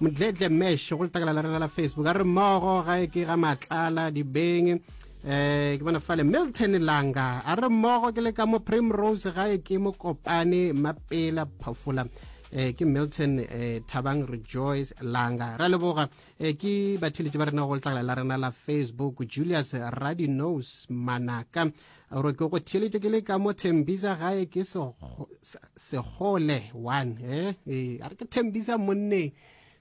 modletle mesh go letakala la rena la facebook a re mmogo ga e ke ga matlala dibeng eh ke bona fale milton langa a re mmogo ke le ka mo primrose ga e ke mo kopane mapela phafola eh ke milton eh thabang rejoice langa ra leboga eh ke batheletše ba rena go letlakala la rena la facebook julius radinos manaka gore ke go theletše ke le ka mo thembisa gae ke segole one eh, eh a re ke thembisa monneng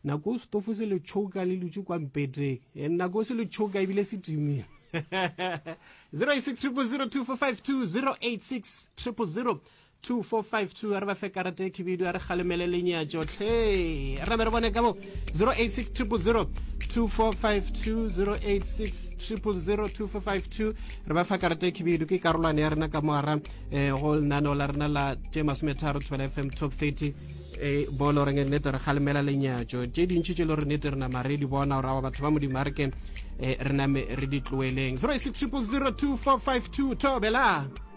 nako o setofo se le tšhoka le lutše kwa mpeteng eh, nako o se le tšhoka ebile se timile 086 000 245 2 086 000 2452 a re ba fe karate khibidu a re kgalemele lenyatšo tlhe ra be re bone ka bo 086000 2452 re ba fa karate khibidu ke karolwane ya rena ka moara eh, go lenaneo la rena la tše masometharo thobela fm top 30 e bolo reng nete re kgalemela lenyatšo tše dintšhi tše le gore nete re nama re di bona gore aba batho ba modimo a re ke eh, re name re di tloeleng 06 000 2452 thobela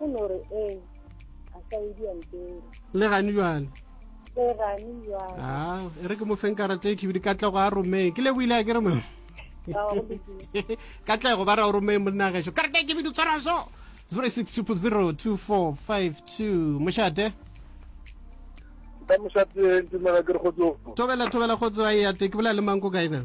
O no re eng? A sa edi a mpere. Le gane bjalo. Le gane bjalo. Ah, e re ke mo feng karata e khibidi katlego a romeng. Ke le buile ke re mo. Katlego ba ra o romeng monna gašo. Karata e khibidi tshwara so. 06002452 mošate ka mošate ntumela ke re go tso tobela tobela go tso a e ate ke bolela le manko kaena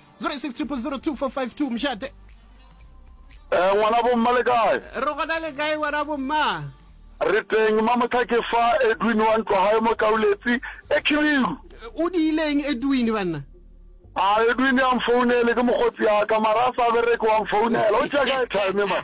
0600024552 mšate Eh, ngwana bomma le kae re gona le kae ngwana bomma re teng mamotlha ke fa edwin wa ntlo gae mo kauletsi e khibiru o diileng edwin banna a edwin ya mfounele ke mokgotsi yaka mara a sa bereke wa mfounela o tšea kae time ma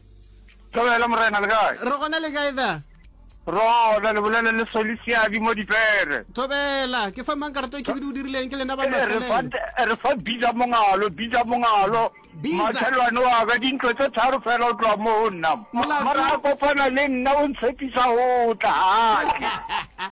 Thobela morena le kae? Re gona le kae da? Rona le bolele le Solisiadi mo dipere. Thobela, ke fa mang karata e khibidu o dirileng ke lena ba eh, mafelele. Eh, re fa biza mongalo, biza mongalo. Machelwane wa ka dintlo tse tharo fela o tloa mo ho nna. Mara a kopana le nna o ntshepisa ho tla.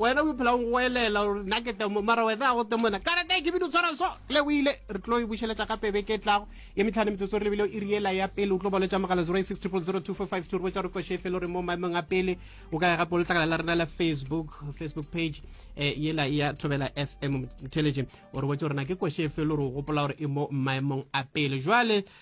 wena o iphela o ngoelela gore nna ke temo mara wena a go temona karata e kebile o tshwara so le o ile re tlo e bušeletša gape beke e tlago ye metlhano metsotso re lebile o iriela ya pele o tlo boletša mogala 086000245 to re botša gore koše e felo re mo maemong a pele o ka ya gape o letlakala la rena la facebook facebook page um yela ya thobela fm intelligent o re botša gore na ke koše e felo gore o gopola gore e mo maemong a pele jwale